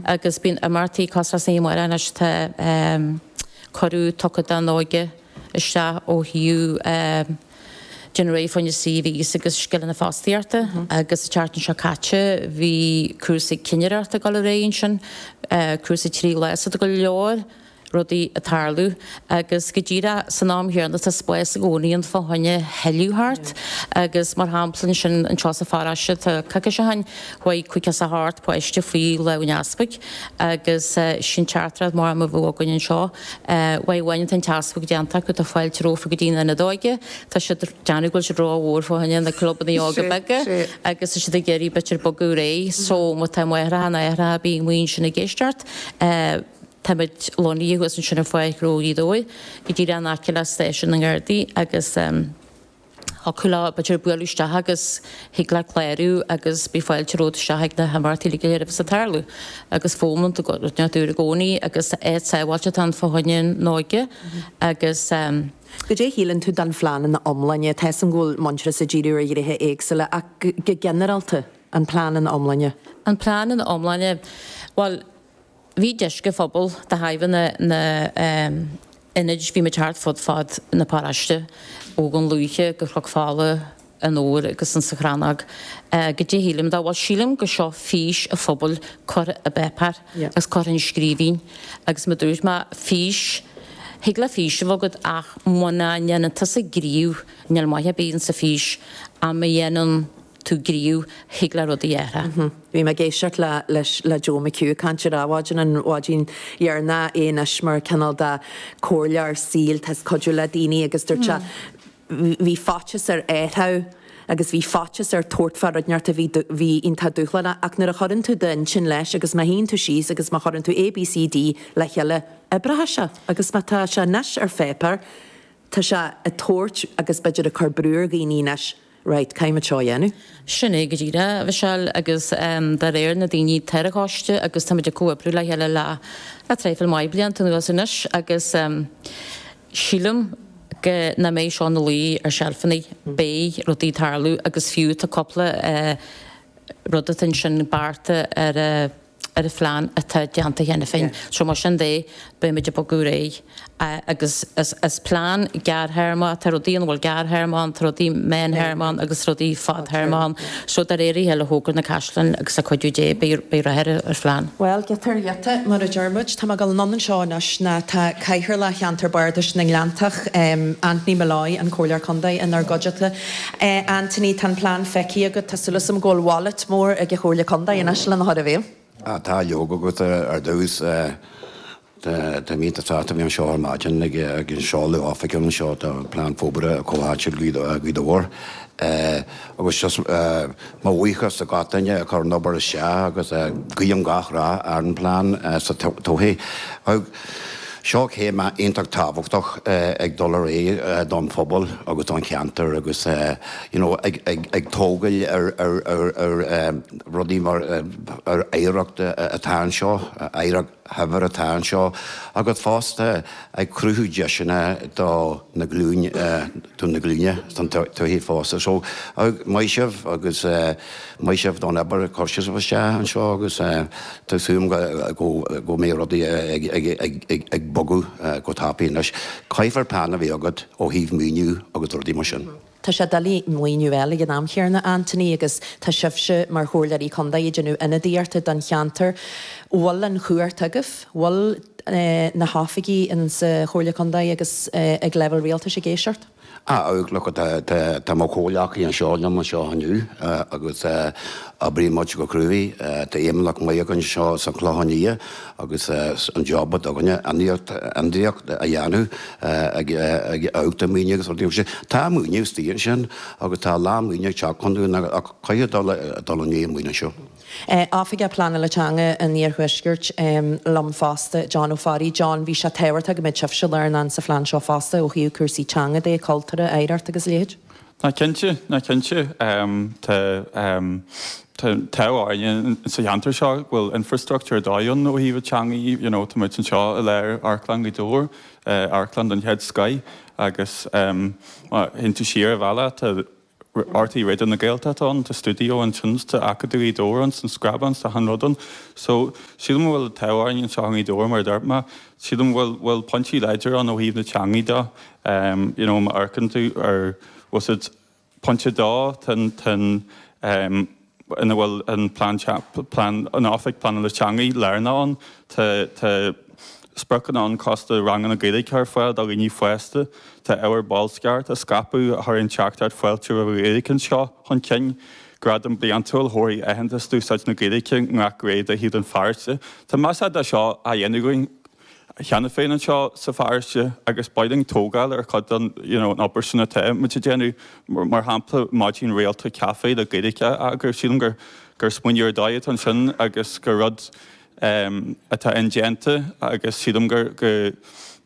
agus bíonn imeachtaí cosúil leis an am seo anois tá cuireadh tugtha don óige isteach ó thaobh déanamh réidh fá choinne CVs agus scileanna fostaíochta agus sa tseachtain seo caite bhí cúrsaí cinnireachta ag dul ar aghaidh ansin, cúrsaí trí lá so tá go leor. rudaí ag tarlú agus go díreach san am chéanna tá spás i gcónaí ann fá choinne a thuilleadh thart agus mar shampla ansin anseo sa pharáiste tá coicís ó shin chuaigh céad caoga páiste faoi lámh an easpaig agus sin dearcadh mar a bheadh againn anseo, uair amháin atá an t-easpag déanta acu, tá fáilte rompu go dtí an Ionad Óige, tá siad ag déanamh go bhfuil siad ró-mhór fá choinne na clubanna óga beaga agus tá siad ag iarraidh b'fhéidir bogadh ar aghaidh so má tá máithreacha nó aithreacha bíonn muid ansin ag éisteacht. Táimid lonnaithe thuas ansin ar Fána Chroich Uí Bhaoill, go díreach in aice le stáisiún na nGardaí agus thiocfadh leo, b'fhéidir, bualadh isteach agus thig leat clárú agus beidh fáilte romhat isteach ag na himeachtaí uilig a bheas ag tarlú. Agus bíonn muid i gcónaí agus áit sábháilte atá ann fá choinne an óige agus. Goidé a shíleann tú den phlean ina iomláine? Tá 'fhios agam go bhfuil Muintearas ag díriú ar ghnéithe éagsúla ach go ginearálta, an plean ina iomláine. An plean ina iomláine, bhuel, Bhí deis ag an phobal de thairbhe na n-ionad, bhí muid thart fud fad na paráiste ó Dhún Lúiche go Chnoc Fola anoir agus insa Chrannóg go dtí, sílim go bhfuil, sílim gur seo fís an phobail curtha i bpáipéar agus curtha i scríbhinn agus mar dúirt mé fís, thig le fís a bheith agat ach muna ndéanann tusa gníomh níl maith ar bith insan fhís ach ma dhéanann. tú gníomh, thig le rudaí a. Bhí mé ag éisteacht le, leis, le Joe McHugh ag caint ar Adhmhaidin an mhaidin dheireanach, é anois mar cineál de comhairleoir saoil, tá sé ag cuidiú le daoine agus dúirt sé, bhí faitíos air, a deir sé, agus bhí faitíos air tabhairt fá rud ínteacht a bhí, bhí iontach dúshlánach ach nuair a chuireann tú d'intinn leis agus má shuíonn tú síos agus má chuireann tú A, B, C, D le chéile, oibreoidh sé agus má tá sé anois ar pháipéar, tá sé ag tabhairt agus b'fhéidir ag cur brú ar dhaoine anois. Raight, caithfidh muid seo a dhéanamh. Sin é go díreach, a Mhichelle, agus dá réir, na daoine atá ar an choiste agus táimid ag comhoibriú le chéile le traidhfil mhaith blianta anuas anois agus sílim go, nach mbeidh seo ina luí ar seilfeanna, beidh rudaí ag tarlú agus fiú tá cúpla rud atá ansin, beartaithe ar. ar an phlean atá déanta cheana féin. So mar sin de, beimid ag bogadh ar aghaidh. Agus is plean gearrthéarma, tá rudaí ina bhfuil gearrthéarma ann, tá rudaí meán théarma ann agus rudaí fadthéarma ann. So de réir a chéile a thógfar na caisleáin agus le cuidiú Dé beidh rath ar an phlean. Bhuel, giota ar ghiota, mar a deir muid. Tá mé ag dul anonn anseo anois ná tá Cathaoirleach Cheantar Bardais na nGleanntach, Anthony Molloy, an Comhairleoir Contae, inár gcuideachta. A Anthony, tá an plean feicthe agat. Tá súil agam go bhfuil bhailéad mór ag an Chomhairle Contae anois lena chur i bhfeidhm. Ah, tá, leoga, agus ar dtús. Tá mé iontach sásta a bheith anseo ar maidin ag an seoladh oifigiúil anseo do Phlean Forbartha Comhtháite Áitiúil Ghaoth Dobhair. Agus seo mo bhuíochas do gach duine a chuir an obair isteach agus guím gach rath ar an bplean sa todhchaí. Seo céim iontach tábhachtach ag dul ar aghaidh don phobal agus don cheantar agus you know ag tógail ar rudaí mar ar oidhreacht atá anseo, oidhreacht shaibhir atá anseo agus fosta ag cruthú deiseanna do na glúin, do na glúine sa todhchaí fosta. So maith sibh agus. Maith sibh don obair a chur sibh isteach anseo agus tá súil agam go mbeidh rudaí ag bogadh go tapaidh anois. Caithfidh plean a bheith agat ó thaobh maoiniú agus rudaí mar sin. Tá sé doiligh maoiniú a fháil ag an am chéarna a Anthony agus tá sibhse mar Chomhairleoirí Contae ag déanamh ionadaíochta don cheantar. Bhfuil an chumhacht agaibh, bhfuil na hoifigigh in sa Chomhairle Contae agus ag leibhéal rialtais ag éisteacht? Ah, look at,, tá mo chomhghleacaí anseo liom anseo inniu agus oibríonn muid go cruaidh, tá feidhmeannach maith againn anseo sa Chlochán Liath agus an job atá againne, ionadaíocht a dhéanamh ó thaobh maoiniú agus rudaí mar sin. Tá maoiniú istigh ansin agus tá a lán maoinithe ag teacht chugainn ach caithfidh dul i ndiaidh an mhaoinithe seo. Oifigeach Pleanála Teanga an Iarthuaiscirt liom fosta, John Ó Fearraigh. John, bhí sé tábhachtach go mbeadh sibhse lárnach sa phlean seo fosta ó thaobh cúrsaí teanga de, cultúrtha, oidhreacht agus a leithéid. Ná cinnte, ná cinnte. Tá an t-ádh orainn in sa cheantar seo go bhfuil infrastruchtúr ar dóigh ann ó thaobh teangaidh de, you know, tá muid anseo i lár amharclann Ghaoth Dobhair, amharclann den chéad scoth agus má théann tú siar an bealach tá, RTÉ Raidió na Gaeltachta ann, tá studio ann, tá Acadamh Ghaoth Dobhair ann, tá an Chrannóg ann, tá achan rud ann. So, sílim go bhfuil an t-ádh orainn anseo i nGaoth Dobhair mar a dúirt mé, sílim go bhfuil, bhfuil pointí láidir ann ó thaobh na teangaidh de. Em, you know, má amharcann tú ar, wuss its, pointe dó, tá an, tá an, em, ina bhfuil an plean plean an Oifig Pleanála Teangaidh lárnach ann. Tá tá spriocanna ann fosta ranganna Gaeilge a chur ar fáil do dhaoine fásta. Tá ábhar bolscaireachta a scaipeadh a chuireann an teachtaireacht fáilte roimh an Ghaeilge anseo chun cinn. Gradam bliantúil a thabharfaidh aitheantas d'úsáid na Gaeilge i ngach réimse de shaol an pharóiste. Tá measarthacht de seo á dhéanamh againn. cheana féin anseo sa pharóiste agus beidh linn tógáil ar chuid den, you know, an obair sin atá muid a déanamh. Mar shampla, maidin rialta caife le Gaeilge a eagrú. Sílim gur, gur smaoineamh ar dóigh atá ansin agus gur rud ehm atá indéanta agus sílim gur, go,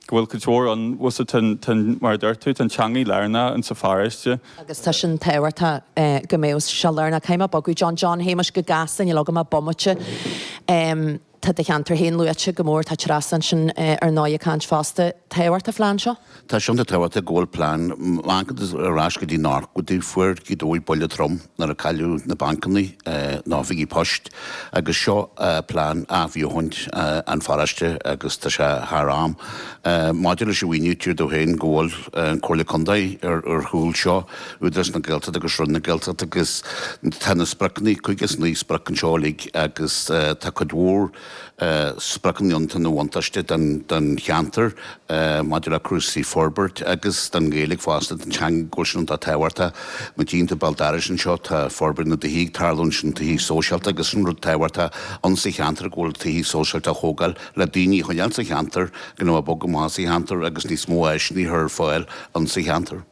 go bhfuil go leor ann. Bhuel so tá, tá an, mar a dúirt tú, tá an teangaidh lárnach in sa pharóiste. Agus tá sin tábhachtach eh go mbeadh sé lárnach. Caithfidh mé bogadh John, John Shéamais go gasta, níl agam ach bomaite. Ehm. Tá do cheantar féin luaite go mór. Tá Treasa ansin ar ndóigh ag caint fosta. Tábhacht an phlean seo? Tá sé iontach tábhachtach go bhfuil plean. Má amharcann tú ar ais go dtí an uair go dtí fuair Gaoth Dobhair buille trom nuair a cailleadh na bancannaí, na hoifigí poist agus seo plean athbheochaint an pharóiste agus tá sé thar am. Maidir leis an mhaoiniú tchí tú féin go bhfuil an Comhairle Contae ar chúl seo. Údarás na Gaeltachta agus Roinn na Gaeltachta agus tá na spriocanna cúig is na spriocanna seo uilig agus tá cuid mhór spriocanna iontu ina bhuntáiste don cheantar maidir le cúrsaí forbairt agus don Ghaeilge fosta, don teanga go bhfuil sin iontach tábhachtach. Mar a dúirt ar ball Treasa anseo tá forbairt na dtithí ag tarlú ansin, na tithe sóisialta agus sin rud tábhachtach in sa cheantar go bhfuil tithe sóisialta á thógáil le daoine a choinneáil sa cheantar gan a bheith ag bogadh amach as an cheantar agus níos mó áiseanna a chur ar fáil in sa cheantar.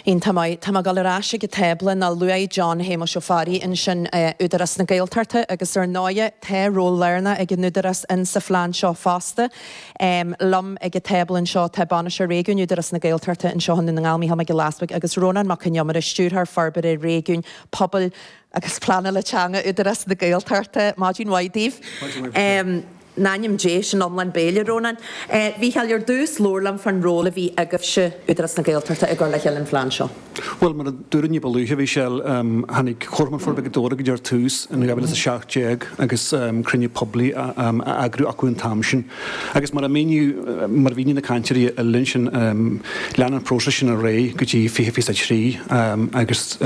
In Tá mé, tá mé ag dul ar ais ag an tábla nó luaigh John Shéamuis Ó Fearraigh ansin Údarás na Gaeltachta agus ar ndóighe tá ról lárnach ag an Údarás in sa phlean seo fosta. Liom ag an tábla anseo tá Bainisteoir Réigiúin Údarás na Gaeltachta anseo i nDún na nGall, Micheál Mac Giolla Easpaig agus Rónán Mac Con Iomaire, Stiúrthóir Forbartha Réigiúin, Pobail, agus pleanála teanga Údarás na Gaeltachta. Maidin mhaith daoibh. Maidin mhaith daoibh. In ainm Dé, sin an lán béil, a Rónáin. A Mhícheáil, ar dtús, labhair liom fán ról a bhí agaibhse, Údarás na Gaeltachta, i gcur le chéile an phlean seo. Bhuel, mar a dúradh ní ba luaithe, a Mhichelle, tháinig Comharchumann Forbartha Ghaoth Dobhair go dtí ar tús in 2017 agus cruinniú poiblí á eagrú acu an t-am sin. Agus mar a míníodh, mar a mhínigh na cainteoirí eile ansin, lean an próiseas sin ar aghaidh go dtí 2023 agus,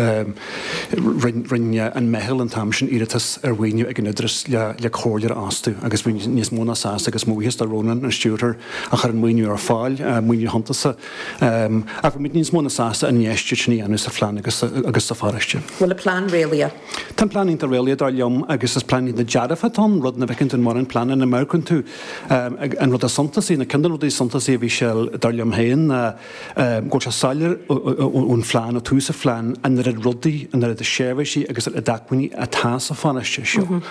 Rinne an meitheal an t-am sin iarratas ar mhaoiniú ag an Údarás le comhairleoir a fhostú agus bhí muid níos mó ná sásta agus mo bhuíochas do Rónán, an stiúrthóir, a chuir an maoiniú ar fáil, maoiniú suntasach. Ach bhí muid níos mó ná sásta an infheistíocht sin a dhéanamh sa phlean agus sa pharóiste. Bhfuil an plean réalaíoch? Tá an plean iontach réalaíoch dar liom agus is plean iontach dearfa atá ann, rud nach bhfeiceann tú in mórán pleananna. Nuair a amharcann tú an rud is suntasaí, nó ceann de na rudaí is suntasaí a bhí sé dar liom féin ná, go bhfuil sé soiléir ón phlean, ó tús an phlean, an oiread rudaí, an oiread seirbhísí agus an oiread acmhainní atá sa pharóiste seo.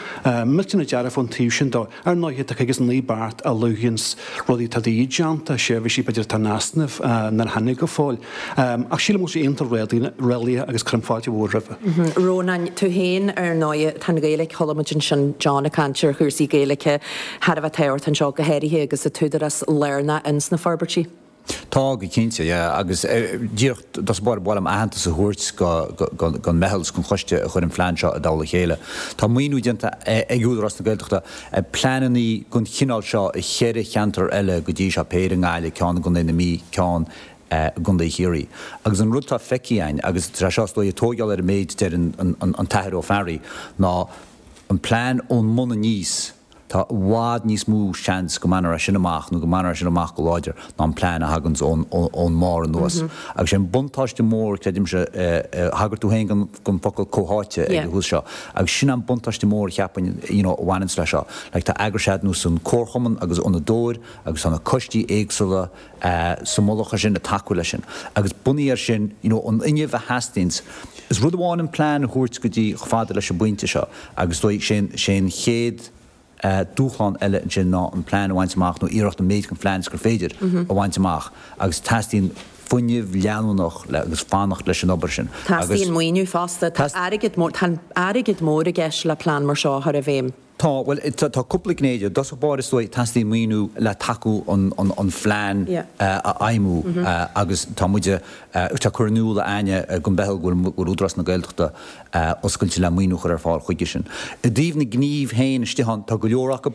Millteanach dearfach ón taobh sin de. Ar ndóighe, tá cúig is naoi beart a luanns rudaí atá de dhíth déanta, seirbhísí b'fhéidir atá in easnamh, nár tháinig go fóill. Ach sílim go bhfuil sé iontach réalaíoch agus cuirim fáilte mhór roimhe. A Rónáin, tú fhéin ar ndóighe, tá an Ghaeilic, chuala muid ansin John ag caint ar chúrsaí Gaeilice thar a bheith tábhachtach anseo, go háirithe agus an tÚdarás lárnach ins na forbairtí. Tá go cinnte, yeah, agus díreach is dócha ba mhaith liom aitheantas a thabhairt gon meitheal is gon choiste a chuir an plean seo i dtoll a chéile. Tá maoiniú déanta ag Údarás na Gaeltachta ar pleanannaí gon chineál seo i cheithre cheantar eile go dtí seo, péire i nGaillimh, ceann i gContae na Mí, ceann i gContae Chiarraí. Agus an rud tá feicthe againn, agus tá sé seo is dóigh ag tóigeáil ar an méid a deir an tAthair Ó Fearraigh, ná an plean ón mbun aníos, Tá i bhfad níos mó seans go mbainfear é sin amach nó go mbainfear é sin amach go láidir ná an plean a thaganns ón mbarr anuas. Agus sé an buntáiste mór, creidimse, thagair tú féin don focal comhtháite ag an tús seo, agus sin an buntáiste mór a cheapfainn you know a bhaineanns le seo. Like tá eagrais ar nós an comharchumann agus an fhondadóir agus tá na coistí éagsúla sa mullach ar sin, ag tacú leis sin. Agus bunaithe ar sin, you know, an fuinneamh a theastaíonns, is rud amháin an plean a thabhairt go dtí, chomh fada leis an bpointe seo, agus is dóigh, sin, sé an chéad dúshlán eile ansin ná an plean a bhaint amach, nó iarracht an méid den phlean is gur féidir a bhaint amach. Agus teastaíonn fuinneamh leanúnach le, agus fanacht leis an obair sin. Teastaíonn maoiniú fosta. Tá airgead mór, tá airgead mór i gceist le plean mar seo a chur i bhfeidhm. Tá, bhuel, tá cúpla gné de. I dtosach báire, is dóigh, teastaíonn maoiniú le tacú an plean a fheidhmiú agus tá muid ag cur in iúl a Áine go mbeidh, go bhfuil Údarás na Gaeltachta oscailte le maoiniú a chur ar fáil chuige sin. I dtaobh na gnímh féin istigh ann, tá go leor acu,